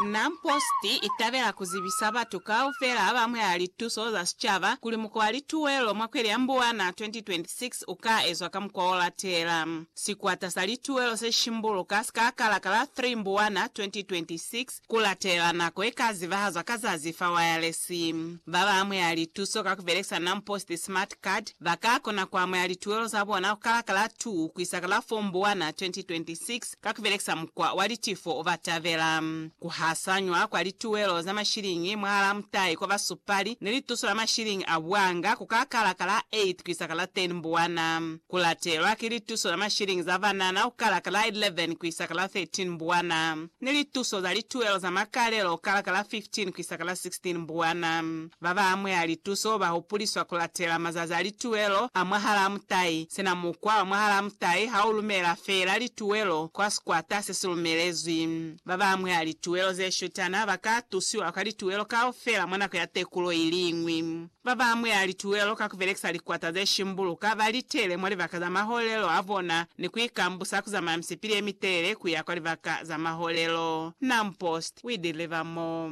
Nam Post i tabela ku zibisa batu kaufela ba ba amuhela lituso za sicaba kuli muko wa lituwelo mwa kweli ya Mbuwana 2026 u ka ezwa ka mukwa o latela. Sikwata sa lituwelo se shimbuluka si ka kala ka la 3 Mbuwana 2026 ku latela nako ye ka zibahazwa ka zazi fa wayalesi. Ba ba amuhela lituso ka ku belekisa Nam Post Smart Card ba ka kona ku amuhela lituwelo za bona ku kala ka la 2 ku isa ka la 4 Mbuwana 2026 Ka ku belekisa mukwa wa litifo, ba tabela ku hasanywa kwa lituelo za mashiliñi mwahalaa mutai kwa basupali ni lituso la mashiliñi a buanga ku ka kala ka la 8 ku isa ka la 10 Mbuwana, ku latelwa ki lituso za mashiliñi za banana ku kala ka la 11 ku isa ka la 13 Mbuwana, ni lituso za lituelo za makalelo ku kala ka la 15 ku isa ka la 16 Mbuwana. Babañwi a lituso ba hupuliswa ku latela mazazi a lituwelo a mwahalaa mutai. Sina mukwa wa mwahalaa mutai ha u lumela feela lituwelo kwa sikwata se si lumelezwi. Babañwi a lituwelo ze shutana ba ka tusiwa kwa lituwelo kaufela mwa nako ya tekulo i liñwi. Babañwi a lituwelo ka ku belekisa likwata ze shimbuluka ba litele mwa libaka za maholelo a bona ni ku ikambusa ku zamaya misipili ye mitelele ku ya kwa libaka za maholelo. Naumpost, We Deliver More.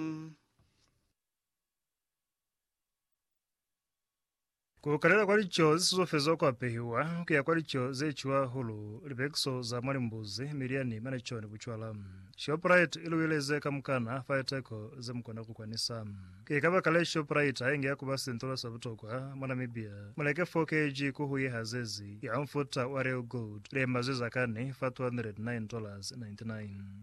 Ku kalela kwa lico ze suzofezwa kwa pehiwa ku ya kwa lico ze cuwa hulu, lipekiso za mwa limbuzi, milyani, maneco, ni bucwala. Shoprite i luweleze kamukana fa liteko ze mu kona ku kwanisa. Ki kabakale Shoprite ha inge ya ku ba sintola sa butokwa mwa Namibia. Mu leke 4 kg ku hu ye hazezi ya mufuta wa Real Gold, lema ze za kani fa $209.99.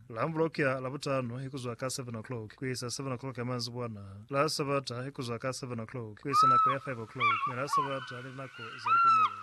La Amblokia, Labutano, ikuzwa ka 7 o'clock kuisa 7 o'clock ya manzibwana, la Sabata, ikuzwa ka 7 o'clock kuisa nako ya 5 o'clock, mi la Sabata ni linako za lipumulo.